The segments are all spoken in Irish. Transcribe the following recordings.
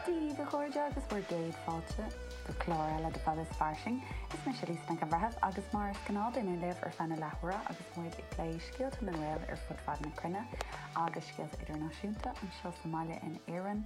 Dia dhaoibh a chairde agus bhur gcéad fáilte go clár eile de Fada is Fairsing. Is mise Lisa Nic an Bhreithimh agus mar is gnáth beidh mé libh ar feadh na leathuaire agus muid ag plé scéalta na nGael ar fud fad na cruinne agus scéalta idirnáisiúnta anseo sa mbaile in Éirinn,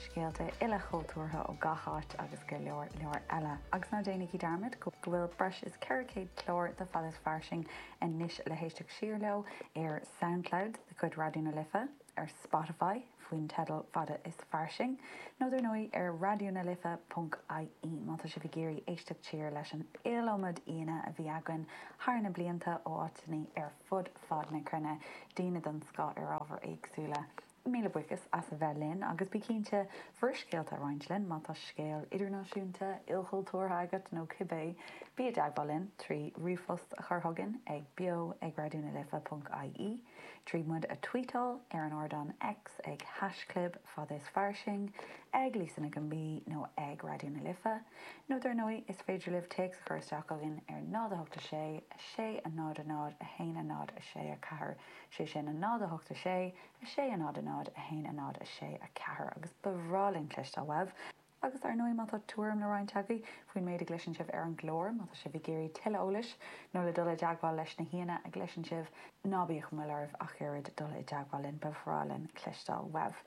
scéalta ilchultúrtha ó gach áit agus go leor, leor eile. Agus ná déanaigí dearmad go bhfuil breis is 400 clár de Fada is Fairsing anois le héisteacht siar leo ar Soundcloud de chuid Raidió na Life. ar Spotify faoin teideal fada is fairsing, nó dar ndóigh ar raidionalife ponc ie má tá sibh ag iarraidh éisteacht siar leis an iliomad aíonna a bhí againn thar na blianta ó áiteanna ar fud fad na cruinne, daoine den scoth ar ábhair éagsúla. Míle buíochas as a bheith linn agus bí cinnte bhur scéalta a roinnt linn má tá scéal idirnáisiúnta, ilchultúrtha agat nó cibé! Bí i dteagmháil linn trí ríomhphost a chur chugainn ag beo@raidionalife ponc ie. trí muid a tvuíteáil ar an ardán X ag haischlib fada is fairsing, ag Lisa Nic an B nó ag Raidió na Life, nó dar ndóigh is féidir libh téacs a chur isteach chugainn ar 0 8 6 6 a 0 a 0 a haon a 0 a sé a ceathair, sé sin a 0 a hocht a sé a sé a 0 a 0 a haon a 0 a sé a ceathair agus ba bhreá linn cloisteáil uaibh. Agus, ar ndóigh, má tá tuairim le roinnt agaibh faoin méid a gcloiseann sibh ar an gclár, má tá sibh ag iarraidh tuilleadh eolais nó le dul i dteagmháil leis na haíonna a gcloiseann sibh, ná bíodh moill oraibh ach oiread dul i dteagmháil linn. Ba bhreá linn cloisteáil uaibh.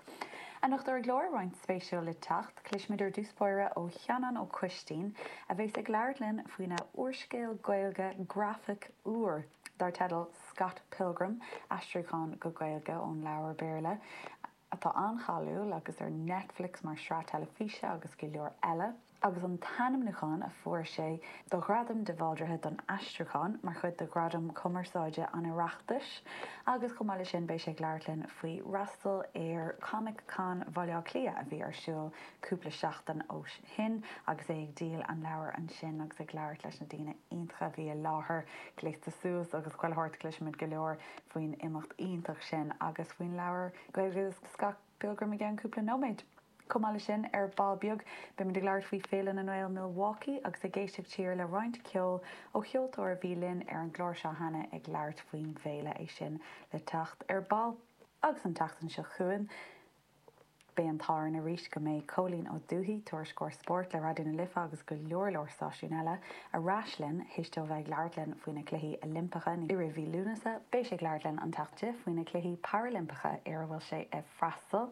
Anocht ar an gclár, roinnt speisialta le teacht. Cloisfimid ar dtús báire ó Sheanán Ó Coistín, a bheas ag labhairt linn faoina úrscéal Gaeilge grafach úr dar teideal Scott Pilgrim, aistriúchán go Gaeilge ón leabhar Béarla. atá an-cháiliúil agus ar Netflix mar shraith teilifíse agus go leor eile, agus an t-ainmniúchán a fuair sé do Ghradam de Bhaldraithe don Aistriúchán mar chuid de Ghradaim Chumarsáide an Oireachtais, agus chomh maith leis sin beidh sé ag labhairt linn faoi fhreastal ar Comic Con Bhaile Átha Cliath a bhí ar siúl cúpla seachtain ó shin agus é ag díol an leabhair ansin agus ag labhairt leis na daoine iontacha a bhí i láthair. Gléasta suas agus chuile shórt, cloisfimid go leor. faoin imeacht iontach sin agus faoin leabhar Gaeilge Scott Pilgrim i gceann cúpla nóiméad. Chomh maith leis sin, ar ball beag, beimid ag labhairt faoi Féile na nGael Milwaukee agus ag éisteacht siar le roinnt ceoil ó cheoltóir a bhí linn ar an gclár seo cheana ag labhairt faoin bhféile. É sin le teacht ar ball agus an tseachtain seo chugainn. Beidh an t-ádh orainn arís go mbeidh Cóilín Ó Dufaigh, Tuairisceoir Spóirt le Raidió na Life agus go leor leor stáisiún eile, ar ais linn. Théis dó bheith ag labhairt linn faoi na Cluichí Oilimpeacha i rith mhí Lúnasa, beidh sé ag labhairt linn an tseachtain seo faoi na Cluichí Parailimpeacha ar a bhfuil sé ag freastal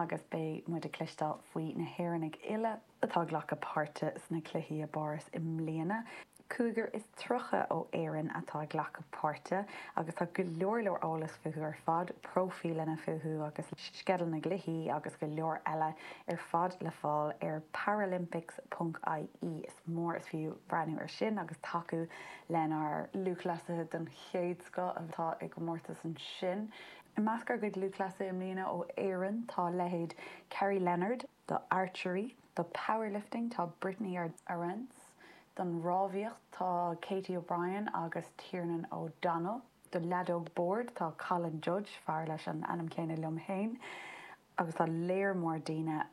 agus beidh muid ag cloisteáil faoi na hÉireannaigh uile, atá ag glacadh páirte sna cluichí i bPáras i mbliana. Cúigear is tríocha ó Éirinn atá ag glacadh páirte agus tá go leor leor eolas fúthu ar fad, próifíleanna fúthu agus sceideal na gcluichí agus go leor eile ar fad le fáil ar paralympics.ie. Is mór is fiú breathnú ar sin agus tacú lenár lúthchleasaithe den chéad scoth atá i gcomórtas ansin. I measc ár gcuid lúthchleasaithe i mbliana ó Éirinn tá leithéid Kerry Leonard, do archery, do powerlifting tá Britney Arendse, don rámhaíocht tá Katie O'Brien agus Tiernan O'Donnell, do leadóg boird tá Colin Judge, fear leis an ainm céanna liom féin, agus tá léar mór daoine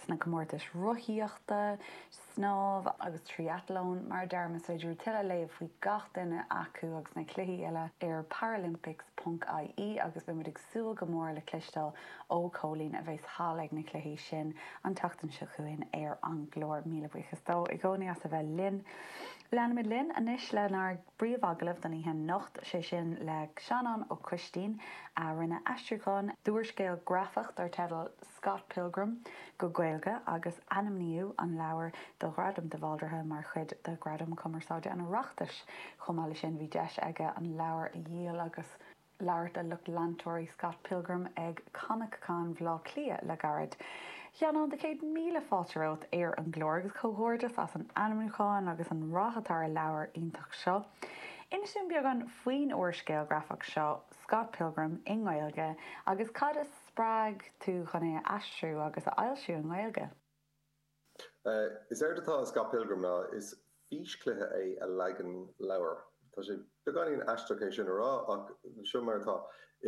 sna comórtais rothaíochta. Snámh agus Triathlón, Mar a deirim, is féidir tuilleadh a léamh faoi gach duine acu agus na cluichí uile ar paralympics ponc IE agus beidh muid ag súil go mór le cloisteáil ó Chóilín a bheas thall ag na cluichí sin an tseachtain seo chugainn ar an gclár. Míle buíochas dó i gcónaí as a bheith linn. Leanfaimid linn anois lenár. bpríomhagallamh don oíche anocht, sé sin le Seanán Ó Coistín, a rinne aistriúchán d'úrscéal grafach dar teideal Scott Pilgrim go Gaeilge, agus ainmníodh an leabhar do Ghradam de Bhaldraithe mar chuid de Ghradaim Chumarsáide an Oireachtais. Chomh maith leis sin, bhí deis aige an leabhar a dhíol agus. labhairt le lucht leantóirí Scott Pilgrim ag Comic Con Bhleá Cliath le gairid. A Sheanáin, céad míle fáilte romhat ar an gclár agus comhghairdeas as an ainmniúchán agus an rath atá ar an leabhar iontach seo. Inis dúinn beagán faoin úrscéal grafach seo, Scott Pilgrim i nGaeilge, agus cad a spreag tú chun é a aistriú agus a fhoilsiú i nGaeilge. Is éard atá i Scott Pilgrim ná is físchluiche é i leagan leabhair. Tá sé beagáinín aisteach é sin a rá ach seo mar atá.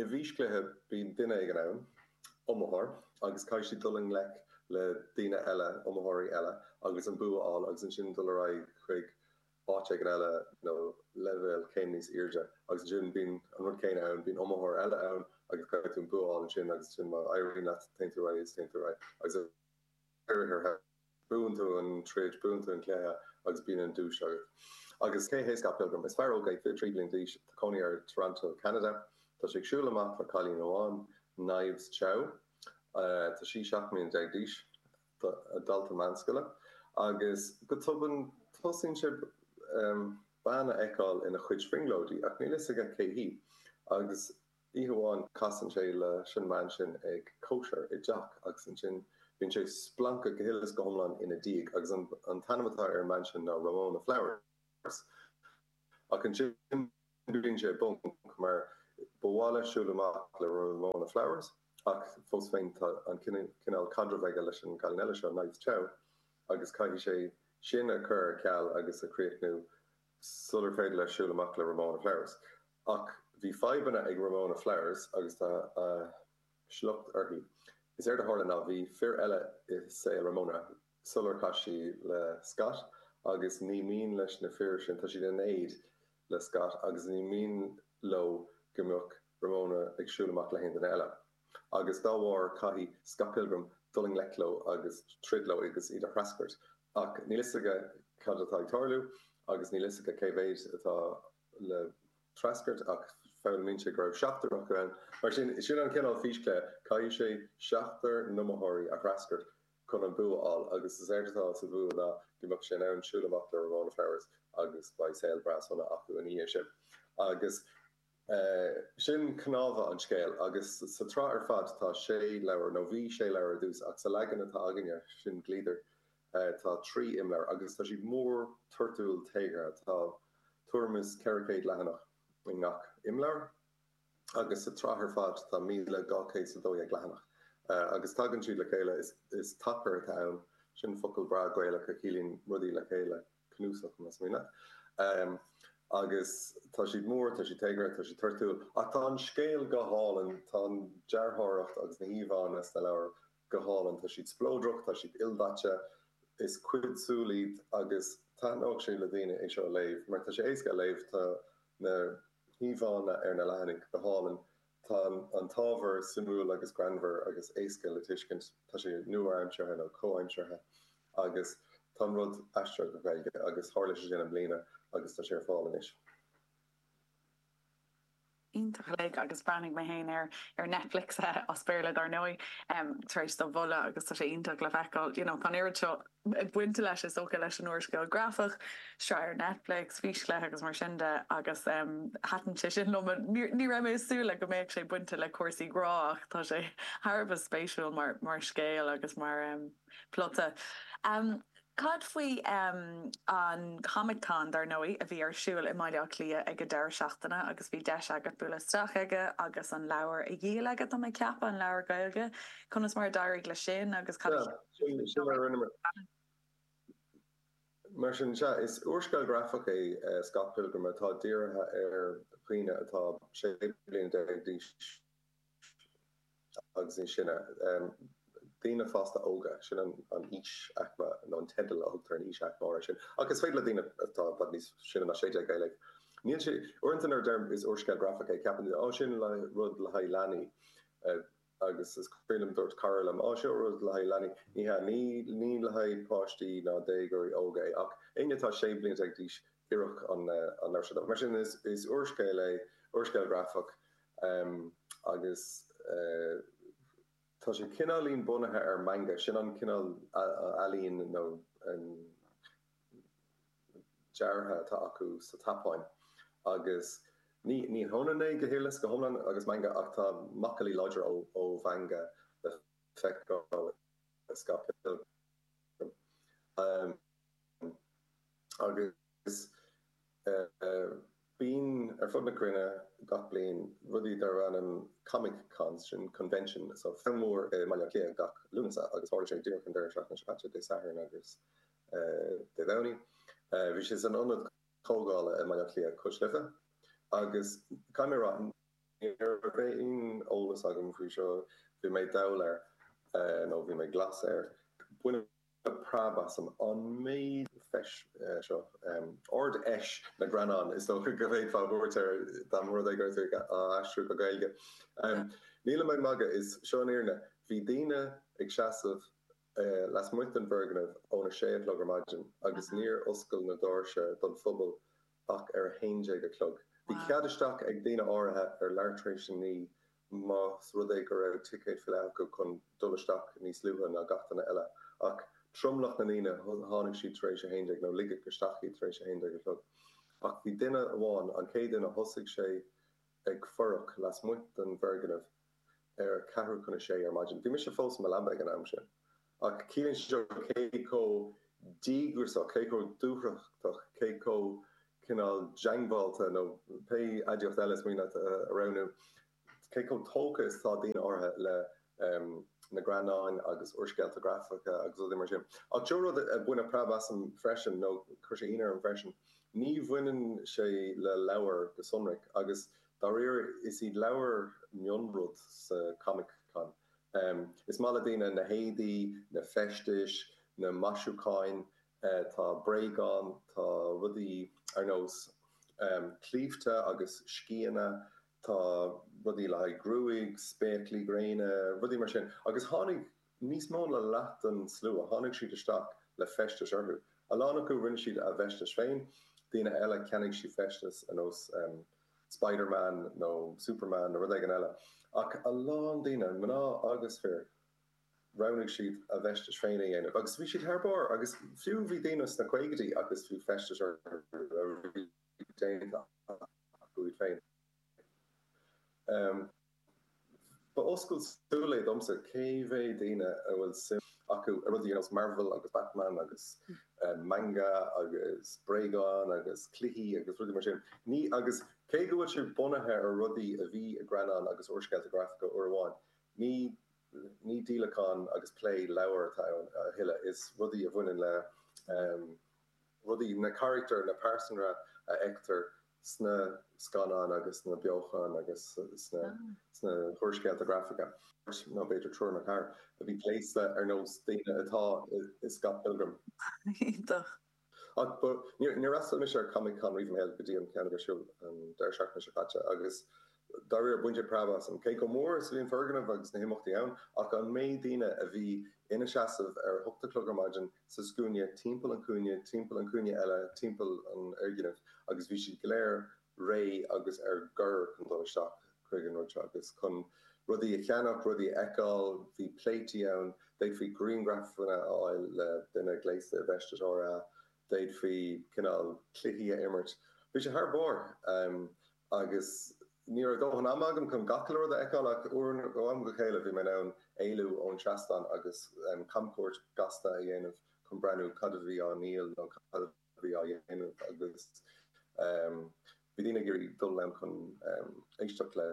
I bhfíschluiche bíonn duine éigin ann, iomaitheoir, agus caithfidh siad dul i ngleic le daoine eile, iomaitheoirí eile, agus an bua a fháil agus ansin dul ar aghaidh chuig áit éigin eile nó leibhéal céim níos airde. Agus ansin bíonn an rud céanna ann, bíonn iomaitheoir eile ann agus caithfidh tú an bua a fháil ansin agus ansin má éiríonn leat téann tú ar aghaidh is téann tú ar aghaidh agus. ar deireadh buann tú an troid, buann tú an cluiche agus bíonn an duais agat. Agus cé hé Scott Pilgrim? Is fear óg é, 23 bliain d'aois, tá cónaí air i dToronto, Ceanada. Tá sé ag siúl amach le cailín amháin, Knives Chau. Tá sí 17 mbliana d'aois, dalta meánscoile. Agus go tobann tosaíonn sé bean a fheiceáil ina chuid bhrionglóidí ach níl a fhios aige cé hí agus. Oíche amháin casann sé leis an mbean seo ag cóisir i dteach agus ansin bíonn sé splanctha go huile is go hiomlán ina diaidh agus an t-ainm atá ar an mbean sin ná Ramona Flowers ach ansin bíonn sé i bponc mar ba mhaith leis siúl amach le Ramona Flowers ach fós féin tá an cineál caidreamh aige leis an gcailín eile seo, Knives Chau, agus caithfidh sé sin a chur ar ceal agus a chríochnú sular féidir leis siúl amach le Ramona Flowers. Ach bhí fadhbanna ag Ramona Flowers agus tá a shliocht uirthi. Is éard a tharla ná bhí fir eile i saol Ramona sular chas sí le Scott agus ní mian leis na fir sin, tá siad in éad le Scott agus ní mian leo go mbeadh Ramona ag siúl amach le haon duine eile. Agus dá bharr caithfidh Scott Pilgrim dul i ngleic leo agus troid leo agus iad a threascairt. Ach níl fhios aige cad atá ag tarlú agus níl fhios aige cé mhéid atá le treascairt ach foghlaimíonn sé go raibh seachtar acu ann. Mar sin, sin an cineál físchluiche. Caithfidh sé seachtar n-iomaitheoirí a threascairt chun an bua a fháil agus is éard atá sa bhua ná go mbeadh sé in ann siúl amach le Ramona Flowers agus beidh saol breá sona acu ina dhiaidh sin. Agus sin cnámha an scéil. Agus sa tsraith ar fad tá sé leabhar, nó bhí sé leabhar ar dtús ach sa leagan atá againne, sin Gliadar. Tá trí imleabhar agus tá siad mór, toirtiúil, téagartha. Tá tuairim is 400 leathanach i ngach imleabhar agus sa tsraith ar fad tá 1,212 leathanach. Agus tagann siad le chéile, is tacar atá ann, sin focal breá Gaelach a chiallaíonn rudaí le chéile, cnuasach, más mian leat. Agus tá siad mór, tá siad téagartha, tá siad toirtiúil. Ach tá an scéal go hálainn, tá an dearthóireacht agus na híomhánna sna leabhair go hálainn. Tá siad spleodrach, tá siad ildaite, is cuid súl iad agus taitneoidh sé le daoine é seo a léamh mar tá sé éasca a léamh, tá na híomhánna ar na leathanaigh go hálainn, tá an t-ábhar suimiúil agus greannmhar agus éasca le tuiscint, tá sé nua-aimseartha nó comhaimseartha agus tá an rud aistrithe go Gaeilge agus tharla sé sin i mbliana agus tá sé ar fáil anois. iontach uilig agus bhreathnaigh mé féin air ar Netflix, as Béarla dar ndóigh, tar éis do mholadh agus tá sé iontach le feiceáil you know tá an oiread seo bainte leis is dócha leis an úrscéal grafach sraith ar Netflix, físchluiche agus mar sin de agus thaitin sé sin liom. Ní raibh mé ag súil le go mbeadh sé bainte le cúrsaí grá ach tá sé thar a bheith spéisiúil mar scéal agus mar phlota. Cad faoi an Comic Con, ar ndóigh, a bhí ar siúl i mBaile Átha Cliath ag an deireadh seachtaine agus bhí deis agat bualadh isteach aige agus an leabhar a dhíol aige, tá mé ag ceapadh, an leabhar Gaeilge. Conas mar a d'éirigh leis sin agus cad a cheap tú faoin Comic Con? Mar sin, sea, is úrscéal grafach é Scott Pilgrim atá dírithe ar dhaoine atá 16 bliana d'aois. agus níos sine, daoine fásta óga, sin an aois aicme nó an teideal a thugtar ar an aois aicme áirithe sin ach is féidir le daoine atá i bhfad níos sine ná sé déag é a léamh like níl sé uaireanta nuair a deirim is úrscéal grafach é ceapann daoine ó sin rud le haghaidh leanaí agus is cuimhin liom dúirt cara liom ó seo rud le haghaidh leanaí ní hea ní ní le haghaidh páistí ná déagóirí óga é ach éinne atá sé bliana déag d'aois oireann an leabhar seo dóibh. Mar sin, is úrscéal é, úrscéal grafach, agus tá sé cineáilín bunaithe ar manga, sin an cineál ealaín nó deartha atá acu sa tSeapáin, agus ní hionann é go huile is go hiomlán agus manga ach tá macallaí láidre ó mhanga le feiceáil i Scott Pilgrim. Agus bíonn ar fud na cruinne gach bliain rudaí darb ainm Comic Cons, sin conventions, ceann mór i mBaile Átha Cliath gach Lúnasa agus tharla sé díreach an deireadh seachtaine seo caite, Dé Sathairn agus Dé Domhnaigh. Bhí sé san ionad comhdhála i mBaile Átha Cliath, Cois Life, agus caithfidh mé a rá ní raibh aon eolas agam faoi seo, bhí mé dall air nó bhí mé glas air. Baineadh preab asam an méid feis seo. Ard-Fheis na nGreannán, is dócha go bhféadfá a thabhairt air dá mba rud é go raibh tú á aistriú go Gaeilge. Nílim ag magadh, is é seo an fhírinne. Bhí daoine ag seasamh lasmuigh den bhfoirgneamh óna sé a chlog ar maidin agus níor oscail na doirse don phobal ach ar 11 a chlog. Bhí cead isteach ag daoine áirithe ar leath tar éis a naoi más rud é go raibh ticéad faoi leith acu chun dul isteach níos luaithe ná gach duine eile. Ach tromlach na ndaoine, tháinig siad tar éis 11 nó ligeadh isteach iad tar éis 11 a chlog. Ach bhí duine amháin, an chéad duine, thosaigh sé ag fuireach lasmuigh den bhfoirgneamh ar a ceathrú chun a sé ar maidin. Bhí mise fós i mo leaba ag an am sin. Ach ciallaíonn sé seo cé chomh díograiseach, cé chomh dúthrachtach, cé chomh cineál diongbháilte, nó pé aidiacht eile is mian leat a roghnú, cé chomh tógtha is atá daoine áirithe le na greannáin agus úrscéalta grafacha agus rudaí mar sin. Ach seo rud a bhain preab asam freisin, nó chuir sé ionadh orm freisin, ní bhaineann sé le leabhair go sonrach, agus dáiríre is iad leabhair mionrud sa Comic Con. Is maith le daoine na héadaí, na feistis, na maisiúcháin. Tá bréagáin, tá rudaí ar nós claimhte agus sceana, tá rudaí le haghaidh gruaig, spéaclaí gréine, rudaí mar sin. Agus tháinig níos mó na leath den slua, tháinig siad isteach le feistis orthu. A lán acu, rinne siad a bhfeistis féin, daoine eile, cheannaigh siad feistis ar nós. Spiderman nó Superman nó rud éigin eile. Ach a lán daoine, mná agus fir, roghnaigh siad a bhfeisteas féin a dhéanamh agus bhí siad thar barr agus fiú bhí daoine sna caogaidí agus bhí feistis orthu a bhí déanta acu iad féin. Ba oscailt súl é domsa cé mhéad daoine a bhfuil suim acu i rudaí ar nós Marvel agus Batman agus manga agus bréagáin agus cluichí agus rudaí mar sin. Ní agus cé go bhfuil sé bunaithe ar rudaí a bhí i greannáin agus úrscéalta grafacha uair amháin, ní ní díolachán agus plé leabhar atá ann a thuilleadh, is rudaí a bhaineann le rudaí, na carachtair, na pearsanra a fheictear sna scannáin agus sna beochain agus sna húrscéalta grafacha, nó b'fhéidir triúr nó ceathrar a bhí gléasta ar nós daoine atá i Scott Pilgrim. Iontach! Ach ba, níor fhreastail mise ar Comic Con riamh i mo shaol go dtí an ceann a bhí ar siúl an deireadh seachtaine seo caite agus Dá réir, baineadh preab asam cé chomh mór is a bhí an foirgneamh agus na himeachtaí ann, ach an méid daoine a bhí ina seasamh ar a hocht a chlog ar maidin sa scuaine timpeall an chúinne, timpeall an chúinne eile, timpeall an fhoirgnimh agus bhí siad go léir réidh agus ar gor chun dul isteach chuig an rud seo agus chun rudaí a cheannach, rudaí a fheiceáil, bhí pléití ann, d'fhéadfaí grianghrafanna a fháil le duine gléasta i bhfeisteas Thor, d'fhéadfaí cineál cluichí a imirt. Bhí sé thar barr! agus ní raibh dóthain ama agam chun gach uile rud a fheiceáil ach uair, ó am go chéile bhí mé in ann éalú ón seastán agus camchuairt ghasta a dhéanamh chun breathnú cad a bhí á ndíol nó cad a bhí á dhéanamh agus bhí daoine ag iarraidh dul ann chun éisteacht le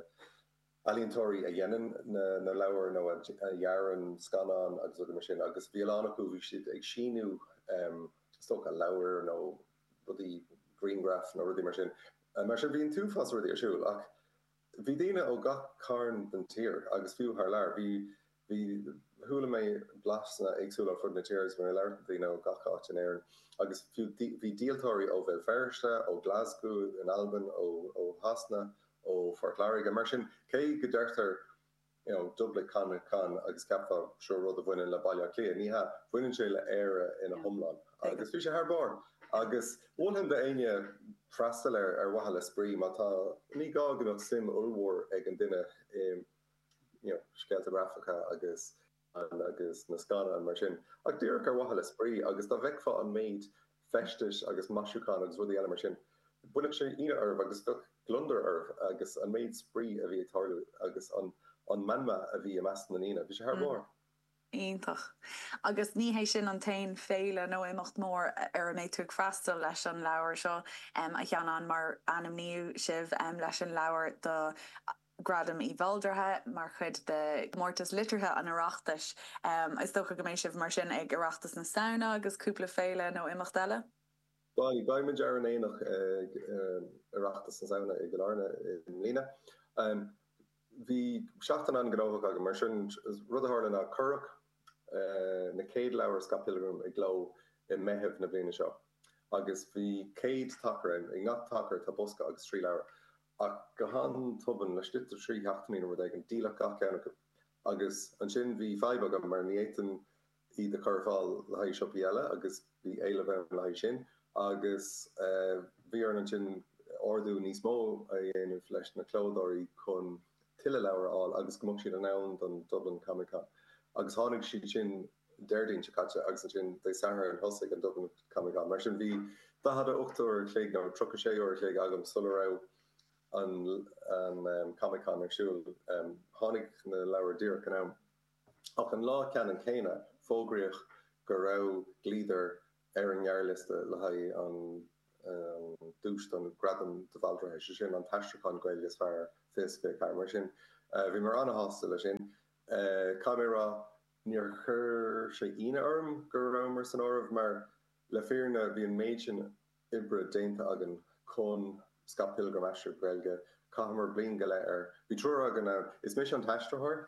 ealaíontóirí a dhéanann na leabhair nó a dhearann scannáin agus rudaí mar sin agus bhí a lán acu, bhí siad ag síniú is dócha leabhair nó rudaí, grianghraif nó rudaí mar sin. Mar sin bhí an t-uafás rudaí ar siúl ach bhí daoine ó gach cearn den tír agus fiú thar lear. Bhí Bhí, chuala mé blasanna éagsúla ar fud na tíre agus mé ag labhairt le daoine ó gach áit in Éirinn agus fiú bhí díoltóirí ó Bhéal Feirste, ó Glasgow in Albain, ó Shasana, ó Phort Láirge. Mar sin, cé go ndeirtear Dublin Comic Con agus cheapfá seo rud a bhaineann le Baile Átha Cliath, ní hea, baineann sé le Éire ina hiomlán agus bhí sé thar barr agus mholfainn do éinne freastal air ar mhaithe le spraoi má tá, ní gá go mbeadh suim ollmhór ag an duine i. scéalta grafacha agus agus na scannáin mar sin ach díreach ar mhaithe le spraoi agus dá bhfeicfeá an méid feistis agus maisiúcháin agus rudaí eile mar sin bheadh sé ionadh oraibh agus bheadh gliondar oraibh agus an méid spraoi a bhí ag tarlú agus an an meanma a bhí i measc na ndaoine bhí sé thar barr. Iontach. Agus ní hé sin an t-aon féile nó imeacht mór ar a mbeidh tú ag freastal leis an leabhar seo a Sheanáin mar ainmníodh sibh leis an leabhar do Ghradam de Bhaldraithe mar chuid de Chomórtas Liteartha an Oireachtais. Is dócha go mbeidh sibh mar sin ag Oireachtas na Samhna agus cúpla féile nó imeacht eile? Bhuel, beidh muid ar an aonach ag Oireachtas na Samhna i gCill Airne i mbliana. Bhí seachtain an-ghnóthach againn mar sin. Rud a tharla ná cuireadh na chéad leabhair Scott Pilgrim i gcló i Meitheamh na bliana seo agus bhí 100 tacar ann. I ngach tacar tá bosca agus trí leabhar. Ach go han-tobann, laistigh de trí seachtainí nó rud éigin, díoladh gach ceann acu. Agus ansin bhí fadhb agam mar ní fhéadfainn iad a chur ar fáil le haghaidh siopaí eile agus bhí éileamh ann le haghaidh sin. Agus bhí orainn ansin ordú níos mó a dhéanamh leis na clódóirí chun tuilleadh leabhar a fháil agus go mbeadh siad in am don Dublin Comic Con. Agus tháinig siad sin Déardaoin seo caite agus ansin Dé Sathairn thosaigh an Dublin Comic Con. Mar sin bhí 48 uair an chloig nó 36 uair an chloig agam sula raibh an Comic Con ar siúl. Tháinig na leabhair díreach in am. Ach an lá ceannann céanna fógraíodh go raibh Gliadar ar an ngearrliosta le haghaidh an duais do Ghradam de Bhaldraithe, sé sin an t-aistriúchán Gaeilge is fearr, fiche 24. Mar sin bhí mé an-sásta leis sin. Caithfidh mé a rá Níor chuir sé ionadh orm go rabhamar san áireamh mar, le fírinne, bhí an méid sin oibre déanta againn chun Scott Pilgrim a aistriú go Gaeilge, chaitheamar bliain go leith air, bhí triúr againn ann, is mise an t-aistritheoir,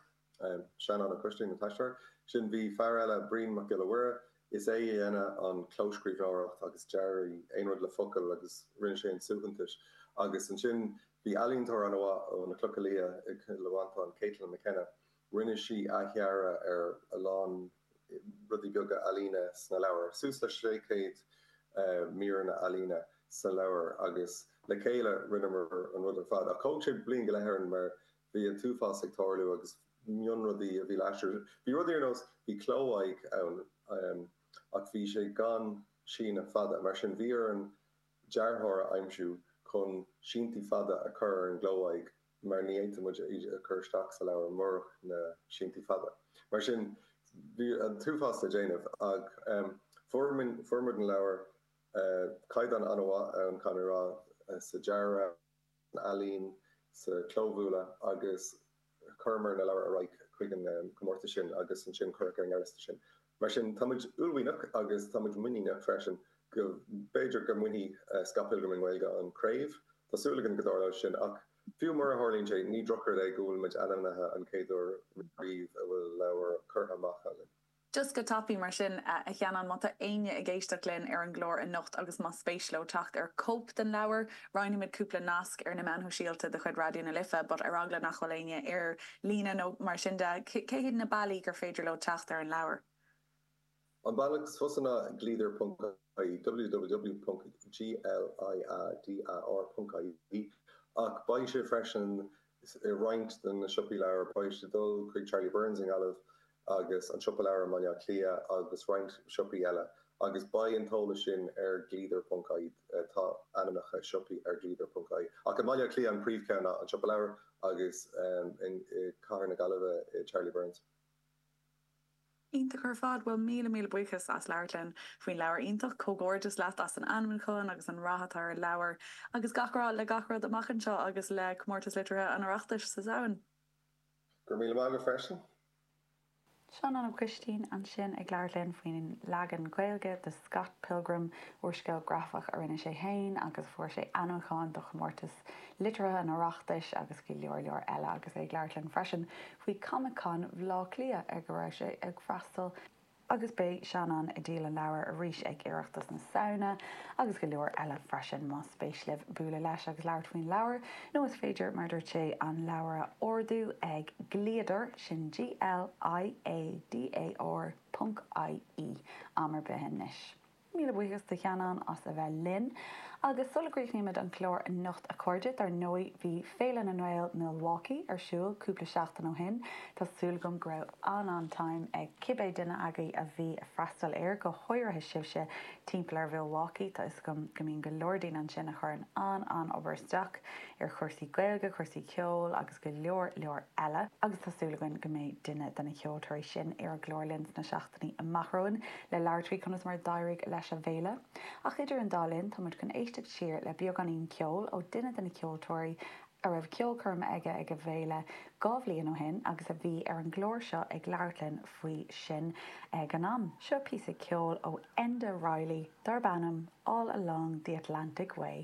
Seanán Ó Coistín an t-aistritheoir, ansin bhí fear eile, Brian Mac Giolla Mhuire, is é a dhéanadh an clóscríbhneoireacht agus dáiríre aon rud le focail agus rinne sé an suaitheantas agus ansin bhí ealaíontóir an-mhaith ó na Clocha Liath i gCill Mhantáin, Caitlin McKenna, Rinne sí athdhearadh ar a lán rudaí beaga ealaíne sna leabhair, suas le 600 míreanna ealaíne sna leabhair agus le chéile rinneamar an rud ar fad. Ach thóg sé bliain go leith orainn mar bhí an t-uafás ag tarlú agus mionrudaí a bhí laistiar. Bhí rudaí ar nós, bhí cló-aghaidh ann ach bhí sé gan síneadh fada, mar sin bhí orainn dearthóir a aimsiú chun sínti fada a chur ar an gcló-aghaidh mar ní fhéadfadh muid é a chur isteach sa leabhar murach na síntí fada. Mar sin, bhí an t-uafás le déanamh ach fuair muid an leabhar. Caighdeán an-mhaith ann, caithfidh mé a rá, sa dearadh, san ealaín, sa chlóbhualadh agus chuireamar na leabhair ar aghaidh chuig an gcomórtas sin agus ansin cuireadh ar an ngearrliosta sinn. Mar sin, tá muid uaillmhianach agus tá muid muiníneach freisin go b'fhéidir go mbainfidh Scott Pilgrim i nGaeilge an chraobh. Tá súil againn go dtarlóidh sin ach fiú mura tharlaíonn sé, ní drochrud é go bhfuil muid ainmnithe an chéad uair riamh a bhfuil leabhar curtha amach againn. Just go tapaidh mar sin, a Sheanáin, má tá éinne ag éisteacht linn ar an gclár anocht agus más spéis leo teacht ar chóip den leabhar, Roinnfimid cúpla nasc ar na meáin shóisialta de chuid Raidió na Life but ar eagla nach bhfuil éinne ar líne nó mar sin de, cé hiad na bealaí gur féidir leo teacht ar an leabhar? An bealach is fusa ná ag Gliadar ponc ie, www.gliadar ponc ie, ach beidh sé freisin i roinnt de na siopaí leabhar. Beidh siad ag dul chuig Charlie Byrne's i nGaillimh agus an Siopa Leabhar i mBaile Átha Cliath agus roinnt siopaí eile agus beidh an t-eolas sin ar Gliadar ponc ie tá ainmneacha siopaí ar Gliadar ponc ie ach i mBaile Átha Cliath an príomhcheann ná an Siopa Leabhar agus i gCathair na Gaillimhe i Charlie Byrne's. Iontach ar fad! Bhuel míle míle buíochas as labhairt linn faoin leabhar iontach. Comhghairdeas leat as an ainmniúchán agus an rath atá ar an leabhar. Agus gach rath le gach rud amach anseo agus le Comórtas Liteartha an Oireachtais sa Samhain. Go raibh míle maith agat freisin. Seanán Ó Coistín ansin ag labhairt linn faoin leagan Gaeilge de Scott Pilgrim, úrscéal grafach a rinne sé féin agus fuair sé ainmniúchán do chomórtas liteartha an Oireachtais agus go leor leor eile agus é ag labhairt linn freisin faoi Comic Con Bhaile Átha Cliath ar a raibh sé ag freastal Agus beidh Seanán ag díol an leabhair arís ag Oireachtas na Samhna, agus go leor eile freisin. Más spéis libh bualadh leis agus labhairt faoin leabhar, nó is féidir, mar a dúirt sé, an leabhar a ordú ag Gliadar, sin G-L-I-A-D-A-R ponc I-E, am ar bith anois. Míle buíochas do Sheanán as a bheith linn. Agus sula gcríochnaímid an clár anocht a chairde, dar ndóigh bhí Féile na nGael Milwaukee ar siúl cúpla seachtain ó shin. Tá súil agam go raibh an-an-time ag cibé duine agaibh a bhí ag freastal air, go háirithe sibhse timpeall ar Mhilwaukee, tá 'fhios agam go mbíonn go leor daoine ansin a chuireann an-an-obair isteach ar chúrsaí Gaeilge, cúrsaí ceoil agus go leor leor eile. Agus tá súil againn go mbeidh duine de na ceoltóirí sin ar an gclár linn sna Ní amach romhainn le labhairt faoi conas mar a d'éirigh leis an bhféile, ach idir an dá linn tá muid chun éisteacht siar le beagáinín ceoil ó duine de na ceoltóirí a raibh ceolchoirm aige ag an bhféile dhá bhliain ó shin agus a bhí ar an gclár seo ag labhairt linn faoi sin ag an am. Seo píosa ceoil ó Enda Reilly darb ainm 'All Along the Atlantic Way'.